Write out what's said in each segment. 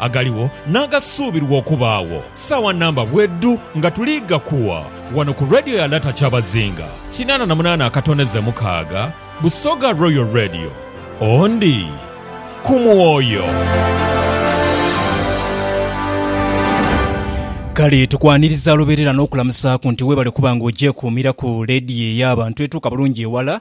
agaligho n'agasuubirwa okubaagho saawa namba bwedhu nga tuli ghakuwa ghano ku Radio ya Lata Kyabazinga kinaana na munaana akatoneze mukaaga, Busoga Royal Radio, Ondi ku mwoyo. Kale tukwaniriza luberera n'okulamusaaku nti webale kuba nga ogyekuumira ku leediyo ey'abantu etuuka bulungi ewala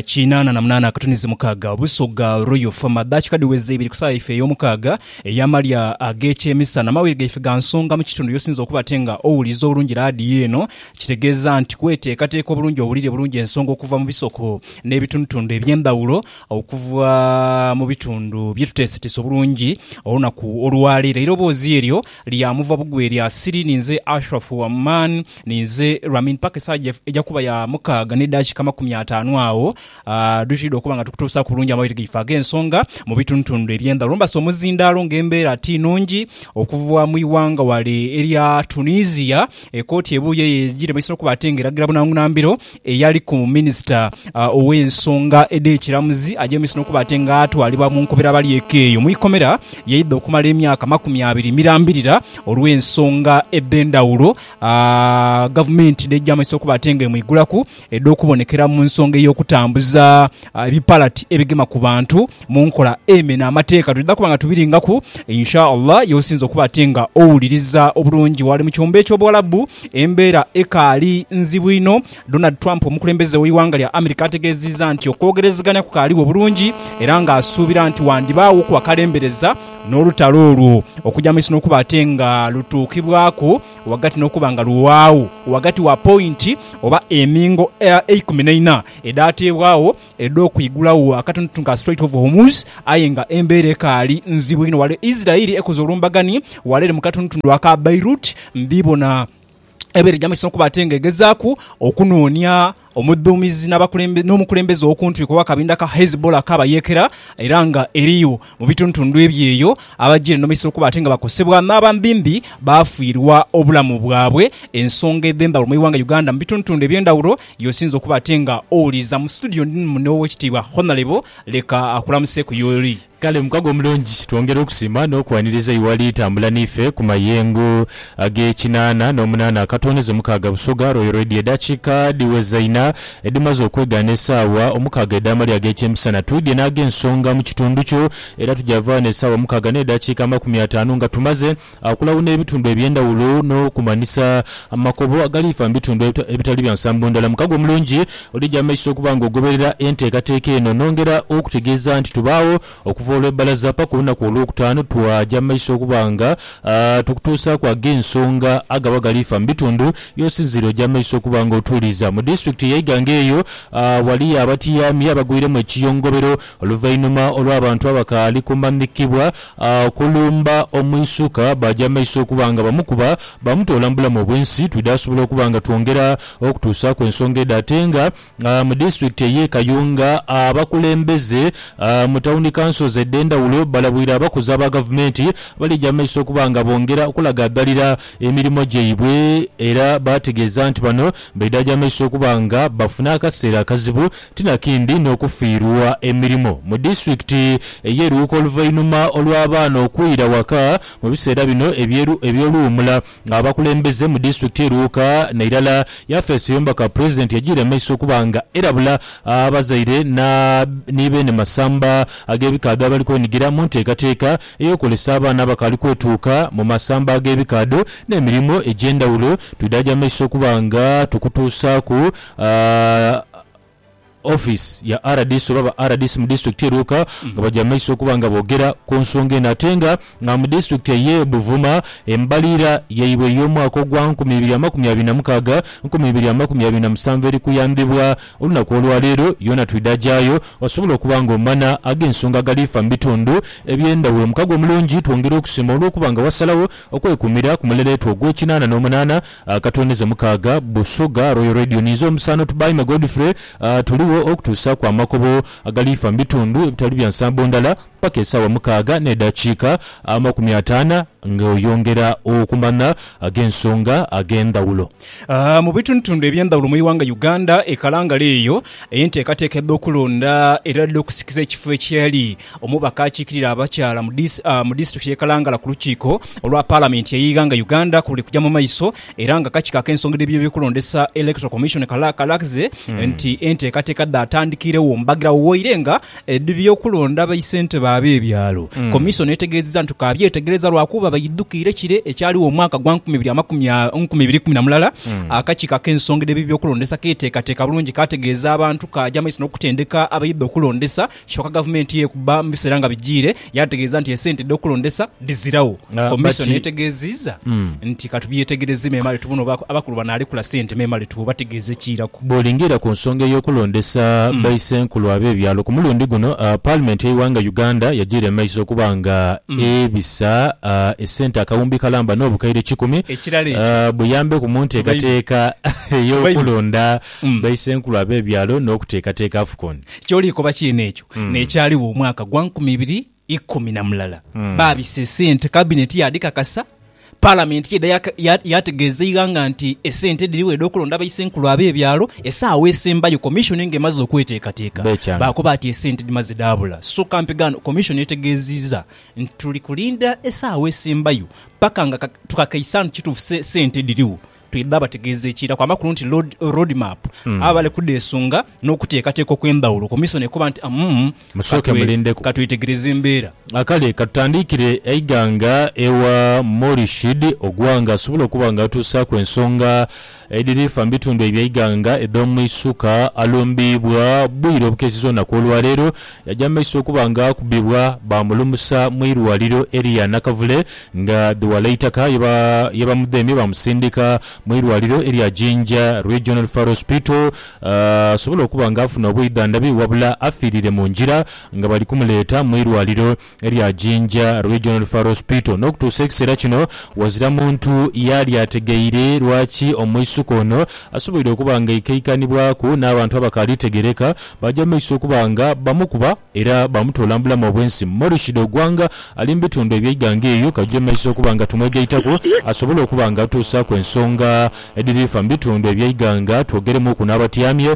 Kinaana na munaana akatunizi mukaaga Busoga Royal Fama daakika dhiweze ibiri ku saa yaife ey'omukaaga ey'amalya ag'ekyemisana. Amawire gaife ga nsonga mu kitundu y'osinze okuba ate nga owuliriza obulungi laadiyo eno kitegeeza nti kweteekateeka obulungi owulire bulungi ensonga okuva mu bisoko n'ebitundutundu eby'endhawulo okuva mu bitundu bye tuteeseteese obulungi olunaku olwaleero. Eirobozi eryo lya muva bugwi erya Siri ninze Ashraf Waman. Ninze Ramin paka esawa eja kuba ya mukaaga ne daakika amakumi ataanu agho dhwitwidha okuba nga tukutuusaaku bulungi amawulire gaife ag'ensonga mu bitundutundu eby'endhaghulo. Mbase omuzindaalo nga embeera ti nungi okuva mu ighanga ghale erya Tunisia, ekooti ebuuye eyo egire mu maiso n'okuba ate nga eragira bunangunha mbiro eyaliku minisita ow'ensonga edh'ekiramuzi aje mu maiso n'okuba ate nga atwalibwa mu nkobera balyeko eyo mu ikomera yaidha okumala emyaka amakumi abiri mirambirira olw'ensonga edh'endhaghulo. Gavumenti n'eja mu maiso okuba ate nga emwigulaku edh'okubonekera mu nsonga ey'okutambuza ebipalati ebigema ku bantu mu nkola emena amateeka. Twidha kuba nga tubiringaku Insha Allah ye osinze okuba ate nga owuliriza obulungi. Ghale mu kyombo eky'Obuwalabu embeera ekaali nzibu inho Donald Trump omukulembeze w'eighanga lya America ategeziiza nti okwogerezeganya kukaaligho bulungi era nga asuubira nti wandibaaghoku akalembereza n'olutalo olwo okuja maiso n'okuba ate nga lutuukibwaku ghagati n'okuba nga luwaagho ghagati wa pointi oba emingo eikumi naina edhateebwagho edh'okwigulagho akatunutunu ka Strait of Hormuz aye nga embeera ekaali nzibu inho wale Israel ekoze olumbagani wale eri mu katunutunu aka Beirut mbiibona ebaire jamwesisa okuba ate nga egezaaku okunoonia omudhuumizi n'omukulembeze ow'okuntwiko ow'akabinda ka Hezbollah ak'abayeekera era nga eriyo mu bitundutundu ebye eyo abajiire n'omwesisa okuba ate nga bakosebwa n'abambimbi baafiirwa obulamu bwabwe. Ensonga edh'endhawulo mu ighanga Uganda mu bitundutundu eby'endhawulo y'osinze okuba ate nga owuliiriza. Mu situdiyo ndi muno Oweekitiibwa Honalebo, leka akulamuseku y'oli. Kale mukago omulungi, twongera okusiima n'okwaniriza iwali itambula n'ife ku mayengo ag'ekinaana n'omunaana akatooneze mukaaga Busoga Royal Radio edakiika dhiweza ina edhimaze okwegaana esaawa omukaaga edh'amalya ag'ekyemisana twidhye n'ag'ensonga mu kitundu kyo era tuja vaa n'esaawa mukaaga n'edakiika amakumi ataanu nga tumaze Okulawuna ebitundu eby'endhawulo n'okumanhisa amakobo agaliifa mu bitundu ebitali bya nsambo ndhala. Mukago omulungi olija amaiso okuba nga ogoberera enteekateeka eno. Nongera okutegeeza nti tubaagho okuva olw'ebbalaza paka olunaku Olwokutaanu. Twaja amaiso okuba nga tukutuusaaku ag'ensonga agaba galiifa mu bitundu by'osinziire. Oja amaiso okuba nga otuuliiza mu disitulikiti ya Iganga eyo awali abatiyaamye abagwiremu ekiyongobero oluvainhuma olw'abantu abakaali kumanhikibwa Akulumba omwisuka baaja maiso okuba nga bamukuba bamutoola mu bulamu obw'ensi. Twidhaasobola okuba nga twongera okutuusaaku ensonga edho ate nga mu disitulikiti ey'e Kayunga abakulembeze mu tawuni kansozi edh'endhawulo balabwire abakozi aba gavumenti abalija maiso okuba nga bongera okulagaagalira emirimo gyaibwe era baategeeza nti bano baidhaja maiso okuba nga bafuna akaseera akazibu Ti na kindi n'okufiirwa emirimo mu disitulikiti ey'e Luuka oluvainhuma olw'abaana okwira waka mu biseera bino eby'oluwumula nga abakulembeze mu disitulikiti ye Luuka n'eirala yafeesi ey'omubaka pulezidenti yajiira mu maiso okuba nga erabula abazaire ni beene masamba ag'ebikaadho abali kwenigira mu nteekateeka ey'okwolesa abaana abakaali kwetuuka mu masamba ag'ebikaadho n'emirimo egy'endhawulo. Twidhaagya mu maiso okuba nga tukutuusaaku. Office ya rdc oba ba rdc mu disitulikiti ye Luuka nga bagya mu maiso okuba nga bogera ku nsonga eno ate nga mu disitulikiti eye Buvuma embaliira yaibwe eyomwaka ogwa nkumi ibiri amakumi abiri na mukaaga nkumi ibiri amakumi abiri na musanvu eri kuyambibwa olunaku olwaleero yoona twidha gyayo osobola okuba nga omana agensonga agali fa mu bitundu ebyendawulo mukago omulungi twongera okusiima olwokuba nga wasalawo okwekumira ku mulereetwo ogwekinaana nomunaana Akatwendeze mukaaga, Busoga, Royal Radio ni zo omusaano Tubaime Godfrey tuligho okutuusaaku amakobo agaliifa mu bitundu ebitali bya nsambo ndala paka esaawa mukaaga n'edhakiika amakumi ataana nga oyongera okumanha ag'ensonga ag'endhawulo. Mu bitundutundu eby'endhawulo mu ighanga Uganda, e Kalangala eyo, enteekateeka edh'okulonda era edh'okusikiza ekifo ekyali Omubaka akiikirira abakyala mu disitulikiti y'e Kalangala ku lukiiko olwa Palamenti ey'eighanga Uganda ku luli kugya mu maiso era nga akakiiko ak'ensonga edh'ebyokulondesa Electoral Commission kalaze nti enteekateeka dhaatandikiregho mbagirawo waire nga edh'ebyokulonda baisentebe ab'ebyalo. Komisoni etegeezezza nti kaabyetegereza lwakuba baidhukiire kire ekyaligho mu mwaka gwa nkumi ibiri kumi na mulala akakiiko ak'ensonga edh'ebyokulondesa keeteekateeka bulungi kaategeeza abantu kaagya mu maiso n'okutendeka abaidha okulondesa Kyoka gavumenti yekuba mu biseera nga bijiire yaategeeza nti esente edh'okulondesa dhiziragho. Kkomision yetegeeziiza nti katubyetegereze memale tubone oba abakulu banaalekula sente memale tubategeeze ekiiraku. Bwolingiira ku nsonga ey'okulondesa baisenkulu ab'ebyalo ku mulundi guno, paalimenti y'eighanga Uganda yajiira mu maiso okuba nga ebisa esente akawumbi kalamba n'obukaire kikumi buyambeku mu nteekateeka ey'okulonda. Baisenkulu ab'ebyalo n'okuteekateeka Afcon. Ky'oliikoba kyene ekyo n'ekyaligho omwaka gwa nkumi ibiri ikumi na mulala. Baabisa esente, Kabineti yaadhikakasa, Palamenti yaidha yaategeeza eighanga nti esente dhirigho edh'okulonda Baisenkulu ab'ebyalo. Esaawa esembayo Komishoni ng'emaze okweteekateeka, baakoba ati esente dhimaze dhaabula. Soka mpigaano Komishoni etegeezizza nti tuli kulinda esaawa esembayo paka nga tukakaise nti kituufu sente dhirigho. Twidha bategeeza ekiiraku amakulu nti Road, road map abo bali kudheesunga n'okuteekateeka okw'endhawulo. Komisona ekoba nti umm Musooke katwe- mulindeku. katwetegereze embeera. A Kale katutandiikire eighanga ewa Morishid Ogwang asobole okuba nga atuusaaku ensonga edhirifa mu bitundu eby'eighanga edh'omu isuka alumbiibwa bwire obukeeseza olunaku olwaleero Yaja mu maiso okuba nga akubibwa, baamulumusa mu irwaliro eria Nakavule nga dhi Walaitaka ye bamudhemye baamusindika mu irwaliro eria Jinja Regional Referral Hospital asobole okuba nga afuna obwidhandhabi wabula afiirire mu ngira nga bali kumuleeta mu irwaliro erya Jinja Regional Referral Hospital. N'okutuusa ekiseera kino ghazira muntu yaali ategeire lwaki omwisuka ono asoboire okuba nga aikaikanibwaku n'abantu abakaali tegereka baaja mu maiso okuba nga bamukuba era bamutoola mu bulamu obw'ensi. Morishid Ogwanga ali mu bitundu eby'eighanga eryo kaije mu maiso okuba nga tumwegaitaku asobole okuba nga atuusaaku ensonga edhiri fa mu bitundu eby'eighanga twogeremuuku n'abatyamye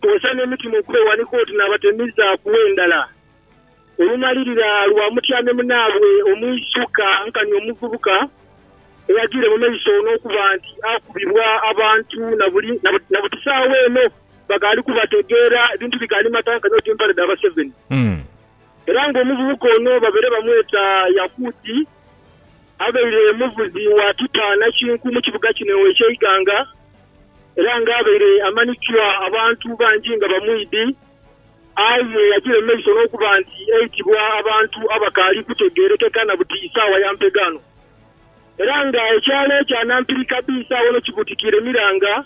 Kozesa n'emitima okwewanika oti n'abatemiza ku endhala. Olumalirira lwa mutyame munaabwe omwisuka nkani omuvubuka eyagire mu maiso n'okuba nti akubibwa abantu na buti saagho eno bakaali kubategeera ebintu bikaali mata nkani oti mpale dha baseveni. Era nga omuvubuka ono babere bamweta Yakuti abaire muvuzi wa tipa nakinku mu kibuga kino eky'eighanga Era ng'abaire amanhikiwa abantu bangi nga bamwidhi, aye yagira mu maiso n'okuba nti eitibwa abantu abakaali kutegeerekeka na buti isaawa ya mpegaano. Era nga ekyalo ekya Nampirika B isaawa eno kibutikiire miranga,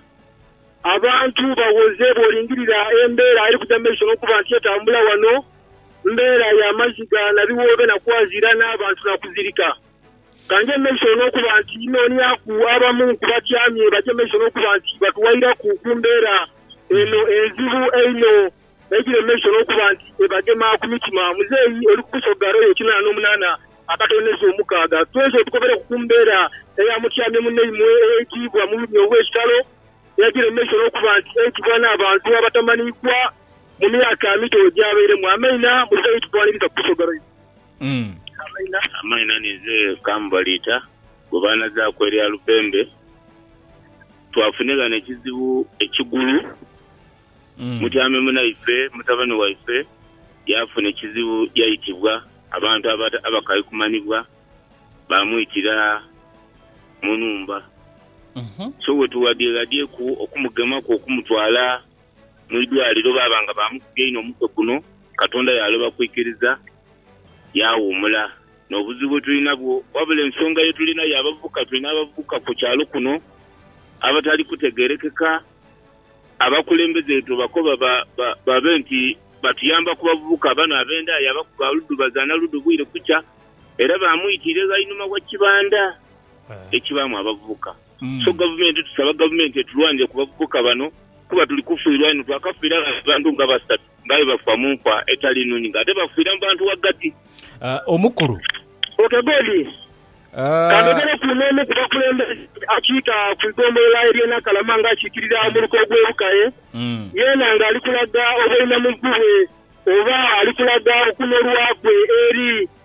abantu baghoze bw'olingirira embeera eri kuja mu maiso n'okuba nti etambula ghano, mbeera ya maziga na biwoobe na kwazira n'abantu na kuzirika. Ka nje mu maiso olw'okuba nti nooniaku abamu ku batyamye baje mu maiso n'okuba nti batuwairaku ku mbeera eno enzibu einho eidhire mu maiso n'okuba nti ebagema ku mitima. Muzeeyi oli ku kusoga royo ekinana n'omunana akatonezo omukaaga. Twenze otukobereku ku mbeera eya mutyamye munaimwe eyaitiibwa mu bulumi obw'ekitalo, eyajire mu maiso n'okuba nti eitibwa n'abantu abatamaniikwa mu myaka mito egyabairemu. Ameina. Muzeeyi, tutwaniriza ku kusoga royo. Amaina amaina ninze Kambaliita gwe baanazaaku erya Lupembe. Twafunhe ghano ekizibu ekigulu. Mutyame munaife mutabani waife yaafuna ekizibu yaitibwa abantu abakali kumanhibwa baamwitira mu nhumba. So wetughadyeghadyeku okumugemaku okumutwala Mu idwaliro baaba nga baamukuga inho omutwe guno, Katonda yaaloba kwikiriza yaawuumula n'obuzibu bwe tuli nabwo. Wabula ensonga ye tuli nayo abavubuka, twine abavubuka ku kyalo kuno abatali kutegeerekeka. Abakulembeze be tubakoba babe nti batuyamba ku bavubuka bano ab'endhaye abakuga ludu bazaana ludu bwire kukya era baamwitiira eghainhuma wa kibanda ekibaamu abavubuka. So gavumenti, tusaba gavumenti etulwanire ku bavubuka bano kuba tuli kufiirwa inho. Twakafiira gha abantu nga basatu nga aye bafa mu nfa etali nnhungi nga ate bafiira mu bantu ghagati. Omukulu. Ok Godi, kandogereku n'omu ku bakulembeze akiika ku igombolola ery'e Nakalama nga akiikirira omuluka ogw'e Bukaye yeena nga ali kulaga obweinamuvubwe oba ali kulaga okunolwakwe eri.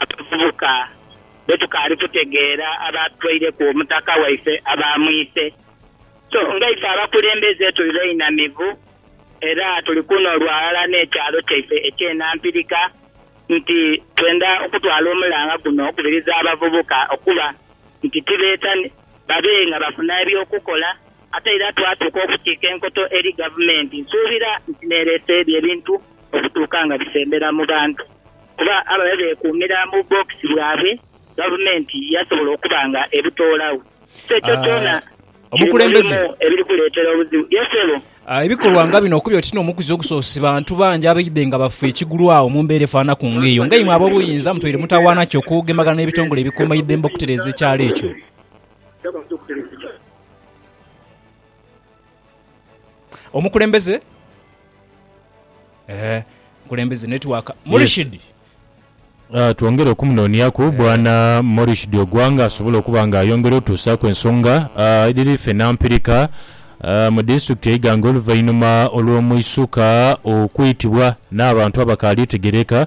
Abavubuka be tukaali kutegeera abaatwaireku omutaka waife abaamwise. So nga ife abakulembeze tuli bainamivu era tuli kuno lwa ghala n'ekyalo kyaife eky'e Nampirika nti twenda okutwala omulanga guno okubiriza abavubuka okuba nti tibeeta babe nga bafuna eby'okukola ate era twatuuka okukiika enkoto eri Gavumenti. Nsuubira nti n'ereese ebyo ebintu okutuuka nga bisembera mu bantu. Kuba ababe beekuumira mu bbookisi bwabwe, gavumenti yasobola okuba nga ebutoolagho. So ekyo kyona kiri mu bimu ebiri kuleetera obuzibu. Yes, ssebo. Ebikolwa nga bino okuli oti n'omukuzi ogusoose, bantu bangi abaidhe nga bafa ekigulwagho mu mbeera efaanaku ng'eyo. Ng'eimwe ab'obuyinza mutweire mutawaana ki okugemagana n'ebitongole ebikuumaidembe okutereeza ekyalo ekyo? Omukulembeze eh, omukulembeze network Murishid. Ah, twongere okumunonyaku bwana Morishid Ogwanga asobole okuba nga ayongera otuusaku ensonga ah, edhiri ffe Nampirika ah, mu disitulikiti e Iganga oluvainhuma olw'omuisuka okwitibwa n'abantu abakaali tegereka.